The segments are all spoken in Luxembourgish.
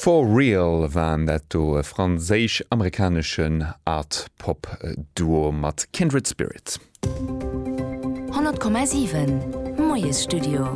For Real waren dat do, e franséisch-amerikaneschen Art-Pop Duo mat Kindred Spirit. 100,7 Moiesstudio.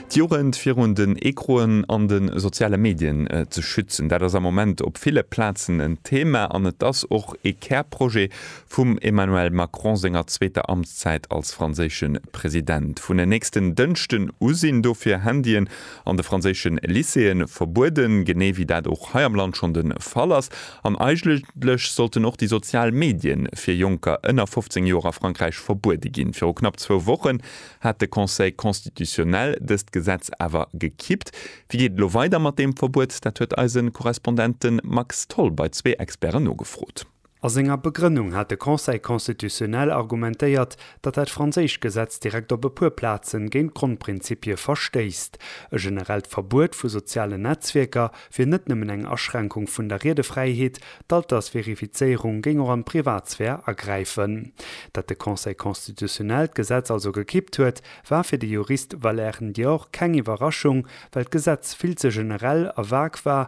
D'Jugend virun den Ecroen an de soziale Medien ze schützen, dat ass am Moment op ville Plazen en Thema an et ass och ee Kärprojet Vum Emmanuel Macron senger zweeter Amtszäit als franséische President. Vun e nächsten Dënschden u sinn dofir Handyen an de franséische Lycéeë verbueden, genee wéi dat och hei am Land schonn de Fall ass. An eigentlech sollten och déi sozial Medie fir Jonker ënner 15 Joer a Frankräich verbuede ginn. Viru knapp zwou Wochen hat de Conseil constitutionnel dëst Gesetz awer gekippt. Wéi geet et elo weider mat deem Verbuet? Dat huet eise Korrespondent de Max Tholl bei zwee Experten nogefrot. A senger Begrënnung hat de Conseil constitutionnel argumentéiert, datt dat franséischt Gesetz direkt op e puer Plazen géint d'Grondprinzipie verstéisst. E generellt Verbuet vu sozialen Netzwierker wier net nëmmen eng Aschränkung vun der Riedefräiheet, d'Altersverifizéierung géing och an d'Privatsphär agräifen. Dat de Conseil constitutionnel d'Gesetz also gekippt huet, war fir de Jurist Valère Ndior keng Iwwerraschung, well d'Gesetz vill ze generell a vague war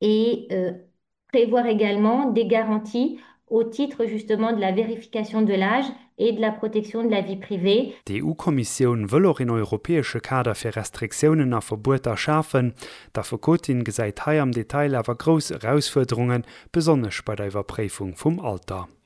et prévoir également des garanties au titre justement de la vérification de l'âge et de la protection de la vie privée. D'EU-Kommissioun wëll och een europäesche Kader fir Restriktiounen a Verbueter schafen. D'Affekotin gesäit hei am Detail awer grouss Erausfuerderungen, besonnesch bei der Iwwerpréifung vum Alter.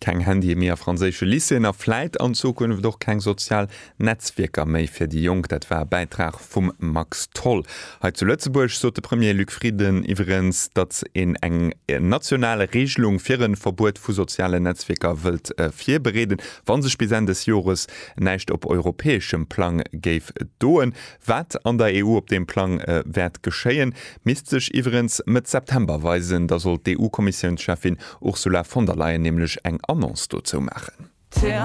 Keng Handyë méi a franséische Lycéeën a vläit an Zukunft och keng sozial Netzwierker méi fir déi Jonk. Dat war e Bäitrag vum Max Tholl. Hei zu Lëtzebuerg sot de Premier Luc Frieden iwweregens, datt een eng national Reegelung fir e Verbuet vu sozialen Netzwierker wëllt virbereeden, wa sech bis Enn des Jores näischt op europäeschem Plang géif doen. Wat an der EU op deem Plang wäert geschéien, misst sech iwwerens Mëtt September weisen. Da soll d'EU-Kommissiounscheffin Ursula von der Leyen nämlech eng Annonce dozou maachen.